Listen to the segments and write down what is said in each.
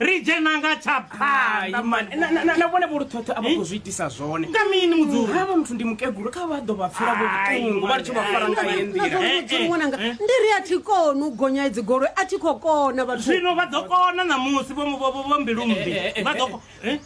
ri dzhena nga tsha phanḓa mani Na- na- na- na vhone vholuthotho a vha khou zwi itisa zwone nga mini mudzuri havha muthu ndi mukegulu kha vha ḓo vha pfela Ai, vhoṱungu vha litsho vha fara nga heyi nḓila Eh, eh, nazvamudzi ṅwananga eh. ndi ri a thi koni u gonya idzi goloi a thi khou kona vhathu zwino vha ḓo kona ṋamusi vho vho- vho- vho mbilumbi Eh, eh, eh, vha ḓo eh, ko- eh?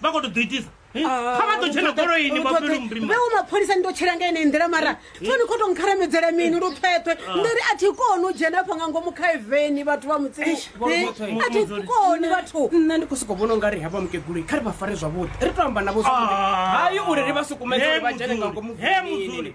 vha khou to ḓo itisa Eh, kha vha ḓo tshena goloini vhapelu murima veo mapholisa ni to tshela nga ine nḓila mara toni kho to nkharamedzela mini lu phethwe ndi ri a thi koni u dzhena pfa nga ngomu kha eveni vhathu vha mutsini Eh, a thi koni vhathu nna ndi khou sokou vhona ungari havha mukeguloi kha ri vha fare zwavhuḓi ri to amba navho zwavhuḓi Ah. hayi uri ri vha sukumedze uri vha dzhene nga ngomu He mudzuli.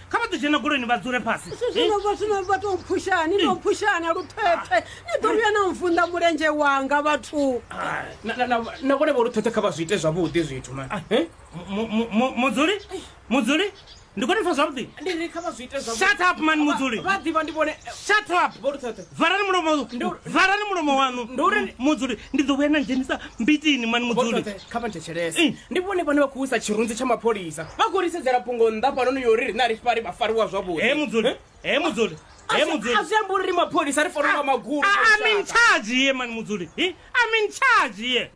kha vha ḓo dzhena goloini vha dzule fhasi zwino vha to mphusha ni to mphusha na luthepfe ni ḓo vhuya na mvunḓa mulenzhe wanga vhathu na vhone vho luthepfe kha vha zwi ite zwavhuḓi zwithu ma mudzuli mudzuli ndi kone pfa zwavhuḓi shut up man mudzuli shut up valani mulomo valani mulomo waṋu mudzuli ndi ḓo vhuya na dzhenisa mbitini man mudzuli kha vha thetshelese ndi vhone vhane vha khou wisa tshirunzi tsha mapholisa vha khou ri sedzela fhungo nnḓa fhanoni yo ri rine a ri fari vha fariwa zwavhuḓi he mudzuli he mudzuli he mudzuli a zwi ambi uri ri mapholisa ri fanela nga magulu a- a- I'm in charge here mani mudzuli Hi, I'm in charge here